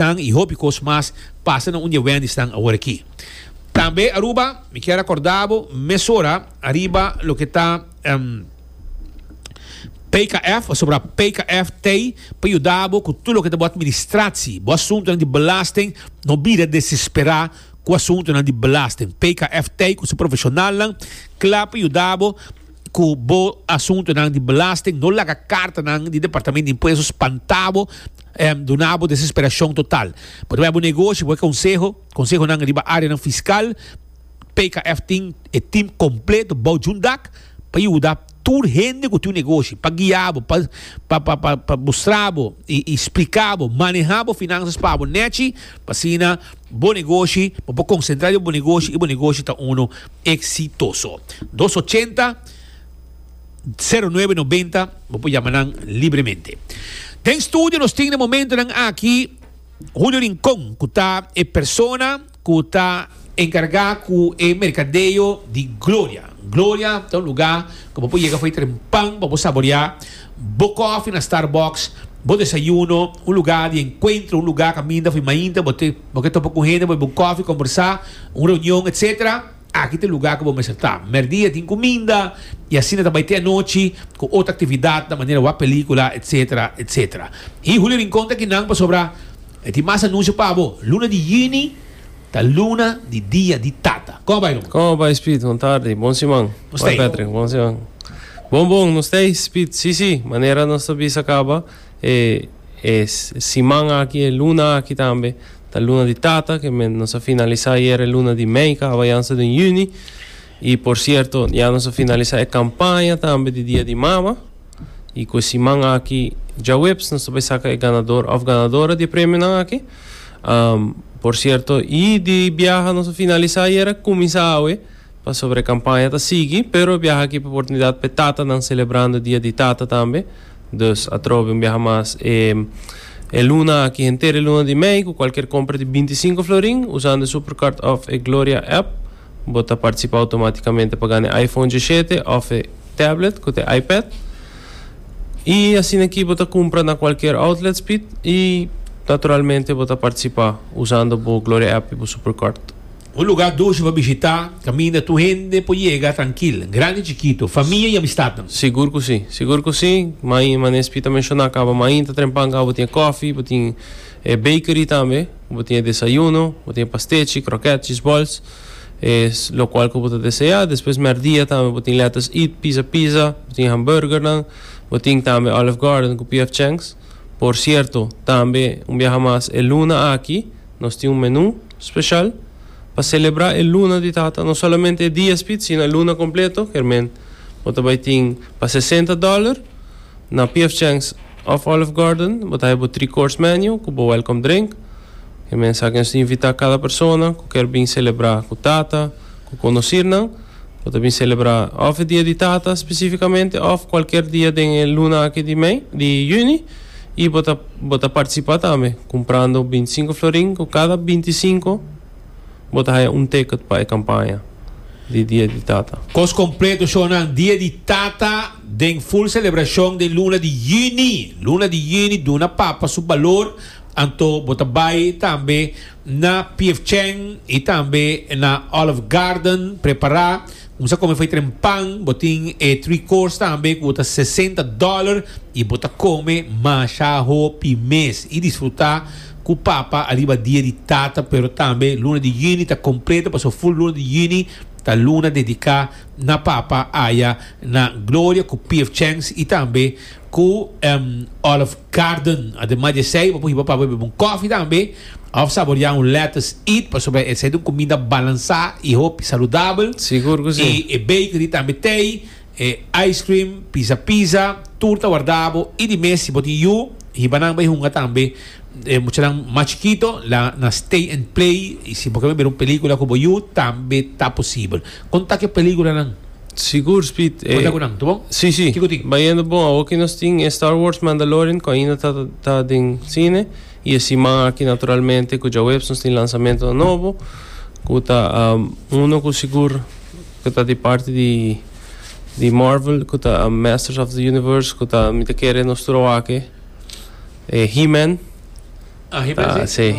tan y hopi cos mas pasa na un di e Wendysnan aworakí. Tambe Aruba, mi kier a corda bo mesora ariba loke ta PKF, pasobra PKF t'ey pa yuda bo cu tur loke ta bo administratie, bo asuntonan di belasting, no bira desespera cu asuntonan di belasting. PKF t'ey cu su profesionalnan cla pa yuda bo. cu bo asuntunan di belasting, no laga cartanan di Departamento di Impuesto spanta bo, em, duna bo desesperacion total. Bo ta bai bo negoshi, bo bai conseho, consehonan riba areanan fiscal, PKF tin e team completo bou djun dak pa yuda tur hende cu tin un negoshi, pa guia bo, pa, pa, pa, pa, pa mustra bo y, y splica bo, maneha bo finanzas pa bo nechi, pa asina bo negoshi, bo por concentra riba bo negoshi y bo negoshi ta uno. exitoso. Dos ochenta, sero nuebe nobenta, bo por yama nan libremente. Den studio nos tin den momentonan aki Julio Rincon, cu ta e persona cu ta encarga cu e mercadeo di Gloria. Gloria ta un lugar cu bo por yega fo'i tren pan pa bo saborea bo coffee na Starbucks, bo desayuno, un lugar di encuentro, un lugar caminda fo'i mainta bo te. Bo ke topa ku hende, bo e bo kofi, kombersá, un reunion, etsetera, aki ta e lugá ku bo mester ta. Mèrdia tin kuminda i asina ta bai te anochi ku otro aktividat ta manera wak pelíkula, etsetera, etsetera. Hi Julio Rincon ta kinan pasobra e tin mas anunsio pa bo. Luna di yüni ta luna di Dia di Tata. Kòma bai, Ron? Kòma bai, Speed? Bon tardi. Bon siman. Nos ta ei. Patrick, bon siman. Bon, bon, nos ta ei, Speed. Sí, sí, manera nos ta bisa kaba. E siman aki, e luna aki tambe ta luna di tata, ke men nos a finalisá ayer e luna di mei kaba ya nos ta den yüni. I por sierto ya nos a finalisá e kampaña tambe di dia di mama. I ku e siman aki djaweps nos ta bai saka e ganador òf ganadora di e premionan aki. Por sierto i di biaha nos a finalisá ayer a kuminsá awe. Pasobra e kampaña ta sigui, pero e biaha aki pa oportunidat pa e tatanan selebrando dia di tata tambe. Dus atrobe un biaha mas e e luna aki henter e luna di mei ku kualker kompra di binti sinku florin usando e Supercard òf e Gloria app bo ta partisipá outomátikamente pa gana e iPhone djishete òf e tablet ku ta e iPad. I asina ki bo ta kumpra na kualker outlet Speed i naturalmente bo ta partisipá usando bo Gloria app i bo Supercard. Un lugá dushi pa bishitá, kaminda tur hende por yega trankil, grandi i chikitu, famia i amistatnan. Sigur ku si. Sigur ku si. Mai, mané Spi ta menshoná kaba, mai inta Trempan kaba bo tin e kòfi, bo tin e bakery tambe, bo tin e desayuno, bo tin e pastechi, kròkèt, chisbòls, e lokual ku bo ta deseá. Despues mèrdia tambe bo tin Letters Eat, Pizza Pizza, bo tin hambùrgernan, bo tin tambe Olive Garden ku PF Chang's. Por sierto, tambe un biaha mas e luna aki. Nos tin un menú speshal pa selebrá e luna di tata, no solamente e dia spit sino e luna kompleto. Kermén bo ta bai tin pa sesenta dòler na PF Chang's òf Olive Garden. Bo ta haña bo three course menu ku bo welcome drink. Kermén sa ke nos ta invitá kada persona ku kèr bin selebrá ku tata. Ku konosirnan, bo ta bin selebrá òf e Dia di Tata spesifikamente òf kualker dia den e luna aki di mei, di yüni, i bo ta bo ta partisipá tambe kumprando bintisinku florin ku kada bintisinku bo ta haya un teket pa e kampaña di Dia di Tata. Kos kompleto shownan Dia di Tata den ful selebrashon den luna di yüni. Luna di yüni duna papa su balor, anto bo ta bai tambe. Na Piefcheng y tambe na Olive Garden prepara un sa come faytren pan, bo tin e three course tambe cu ta sesenta dollar y bo ta come masha hopi mes y disfruta cu papa ariba dia di tata pero tambe luna di juni ta completo pasobra full luna di juni ta luna dedica na papa aya na Gloria cu Piefcheng y tambe Cu Olive Garden. Ademas di esey, bo por hiba pa bebe un coffee tambe of saborea un lettuce eat, pasobra esey ta un comida balansa y hopi saludabel. Sigur cu si. E bakery tambe tey e ice cream, pizza pizza, tur ta warda bo y di mes si bo tin yu, hiba nan bay hunga tambe. E muchanan mas chikito la na stay and play y si bo ken bebe un pelicula cu bo yu tambe ta posibel. Con ta cu e peliculanan? Sigur Speed e. Cuenta cu nan, ta bon? Si si. Kico tin? Bayendo bon, awor ki nos tin e Star Wars Mandalorian cu ainda ta ta den cine y e siman aki naturalmente cu djaweps nos tin lanzamentonan nobo cu ta uno cu sigur cu ta di parti di di Marvel cu ta Masters of the Universe cu ta mi ta kere nos tur a wak e He-Man. Ah He-Man si.